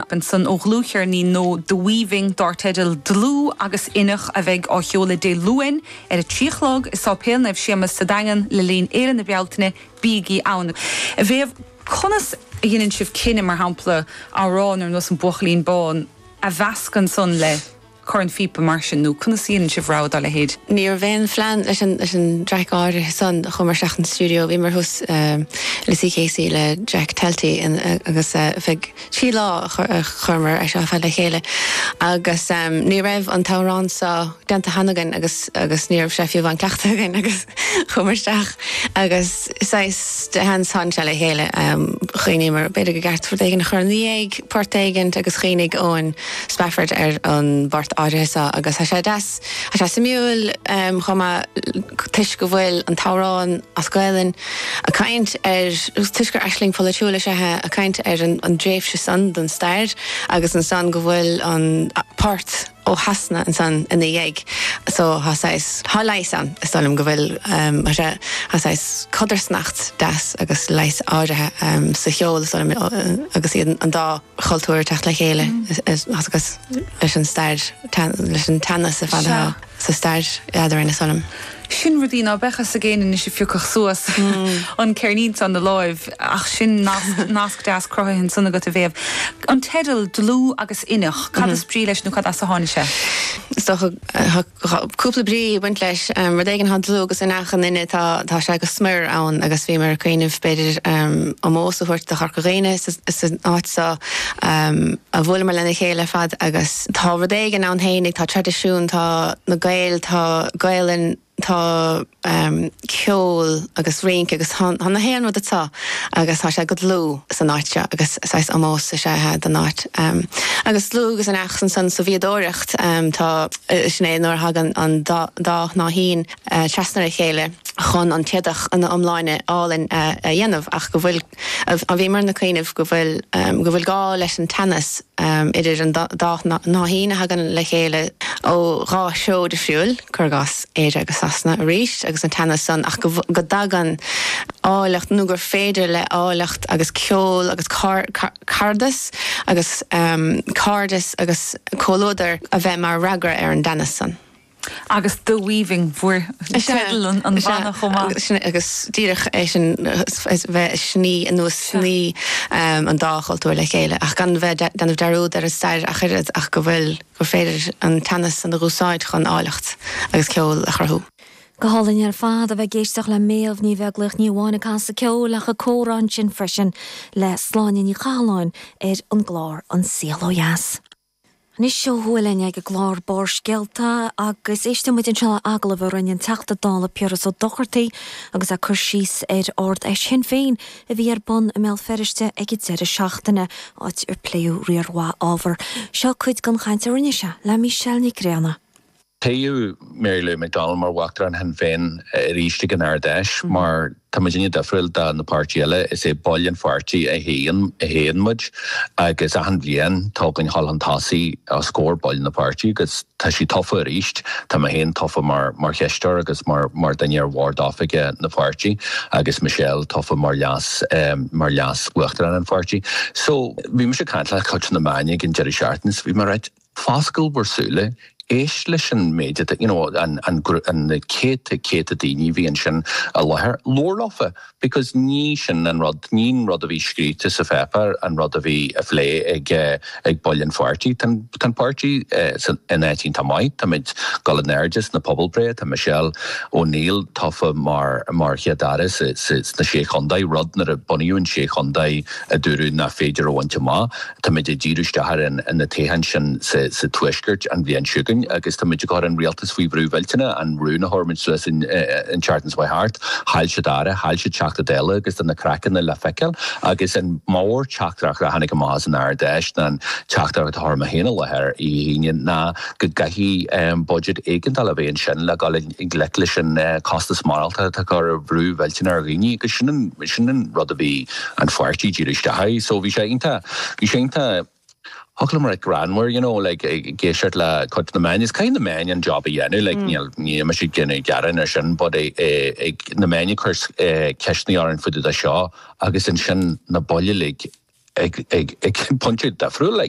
Robinson ó dhlúthcheirnín nua The Weaving dár teideal 'Dlúth agus Inneach' a bheidh á sheoladh Dé Luain ar a trí a chlog i Sáipéal Naomh Séamas sa Daingean le linn Fhéile na Bealtaine, bígí ann! A Mhéabh, conas a dheineann sibh cinneadh, mar shampla, amhrán ar nós 'An Buachaillín Bán' a mheascadh ansan le. cornphíopa mar sin, nó conas a dhéanann sibh rogha dá leithéid? Ní raibh aon phlean leis an dtraic áirithe san, chuamar isteach an stiúideo. Bhíomar thuas i Lissycasey, le Jack Talty agus feadh trí lá a chuireamar é seo ar fad le chéile agus ní raibh an t-amhrán seo déanta cheana againn agus ní raibh sé fiú amháin cleachtaithe againn agus chuamar isteach agus Saghas de sheans tháinig sé le chéile. Chuimhníomar b'fhéidir go gceart rud éigin a chur ina dhiaidh, port éigint agus chuimhnigh Owen Spafford ar an bport áirithe seo agus tá sé deas, tá sé suimiúil chomh maith toisc go bhfuil an t-amhrán as Gaelainn ag caint ar, toisc gur aisling pholaitiúil is ea é, ag caint ar an dtréimhse san den stair agus ansan go bhfuil an port. ó Shasana ansan ina dhiaidh so, tá saghas, tá leigheas ann, is dóigh liom go bhfuil, tá sé, tá saghas codarsnacht deas agus leigheas áirithe sa cheol, is dóigh liom, agus iad, an dá chultúr ag teacht le chéile agus leis an, leis an teannas ar fad atá sa stair eadrainn, is dóigh liom. Sin rudaí ná beadh fhios ag éinne anois a phiocfadh suas an ceirnín san 'na láimh ach sin nasc, nasc deas cruthaithe ansan agat a Mhéabh. An teideal, Dlúth agus Inneach, cad is brí leis nó cad as a tháinig sé? Is dócha tá cúpla brí ag baint leis. Rud éigin atá dlúth agus inneach i nduine, tá, tá sé go smior ann agus bhíomar ag cuimhneamh b'fhéidir ómós a thabhairt do Chorca Dhuibhne is an áit so a bhuaileamar lena chéile ar fad agus, Tá rud éigin ann féinig, tá traidisiún, tá na Gaeil, tá Gaolainn, tá ceol agus rince agus tá na haon rud atá agus tá sé go dlúth san áit seo agus saghas ómós is ea é don áit. Agus dlúth agus inneach ansan sa bhfíodóireacht, tá, sin é nuair a thagann an dá shnáithín trasna a chéile chun an t-éadach ina iomláine álainn a dhéanamh ach go bhfuil, a bhíomar ag cuimhneamh go bhfuil go bhfuil gá leis an teannas idir an dá shnáithín a thagann le chéile ó dhá threo difriúil, cur i gcás, Éire agus Sasana, arís, agus an teannas san ach go dtagann áilleacht nó gur féidir le háilleacht agus ceol agus caradas agus cairdeas agus comhluadar a bheith mar fhreagra ar an dteannas san. agus The Weaving mar theideal an bhanna chomh maith. Is ea, agus díreach é sin, bheith ag sní anuas, sní an dá chultúr le chéile ach gan bheith ag déanamh dearúd ar an stair ach oiread ach go bhfuil, gur féidir an teannas san a úsáid chun áilleacht agus ceol a chruthú. Go hálainn ar fad a bheith ag éisteacht le Méabh Ní Bheaglaoich, ní amháin ag casadh ceoil ach ag comhrá ansin freisin le Sláine Ní Chathalláin ar an gclár An Saol Ó Dheas. Anois ó thuaidh linn ag an gclár Barrscéalta agus éistfidh muid anseo le agallamh a rinne an Teachta Dála Piaras Ó Dochartaigh agus é ag cur síos ar Ard Fheis Shinn Féin a bhí ar bun i mBéal Feirste ag an deireadh seachtaine, áit ar pléadh riar mhaith ábhar. Seo cuid den chaint a rinne sé le Michelle Nic Grianna. Toghadh Mary Lou McDonald mar Uachtarán Shinn Féin arís ag an Ard-Fheis. Mar tá muidinne difriúil do na páirtithe eile, is é baill an pháirtí a thoghann muid agus achan bhliain tá againn a ghabháil chun tosaigh os comhair baill na páirtí agus tá sí tofa arís. Tá mé féin tofa mar chisteoir agus mar duine ar bhord oifige na páirtí agus Michelle tofa mar leas mar leas Uachtarán an pháirtí. So, bhí mise ag caint le cuid na meáin ag an deireadh seachtaine is bhí mé ag. Foscail bhur súile, éist leis an méid atá, you know, an, an, an, na céadta, céadta daoine a bhí ansin i láthair. Labhair leofa because ní sin an rud, ní an rud a bhí scríte sa pháipéar an rud a bhí á phlé ag, ag baill an pháirtí. Tá an, tá an páirtí sa, in áit iontach maith. Táimid ag dul in airde sna pobalbhreithe, tá Michelle O'Neill tofa mar, mar Chéad Aire sa, sa, sna Sé Chontae, rud nuair a bunaíodh an Sé Chontae a dúradh nach féidir a bhaint amach. Táimid ag díriú isteach ar na toghcháin sin sa Tuaisceart an bhliain seo chugainn agus táimid ag cur an rialtas faoi bhrú mhillteanach, an rún a chuir muid suas an tseachtain seo chuaigh thart, chaill siad Aire, chaill siad Teachta Dála agus tá na craiceanna le feiceáil agus an mórtheachtaireacht a tháinig amach as an Ard-Fheis ná an teachtaireacht a chuir mé féin i láthair oíche Aoine ná go gcaithfidh budget éigeandála a bheith ansin le gabháil i ngleic leis an costas maireachtála atá ag cur brú millteanach ar dhaoine agus sin an sin an rud a bhí an pháirtí dírithe isteach air so bhí sé iontach bhí sé iontach fhoclóir greannmhar you know like ag éisteacht le cuid de na meáin is caithfidh na meáin an job a dhéanamh like níl níl mise ag déanamh gearáin ar sin but bhí na meáin ag cur ceisteanna orainn fá dtaobh de seo agus ansin na baill uilig ag ag ag pointe difriúil like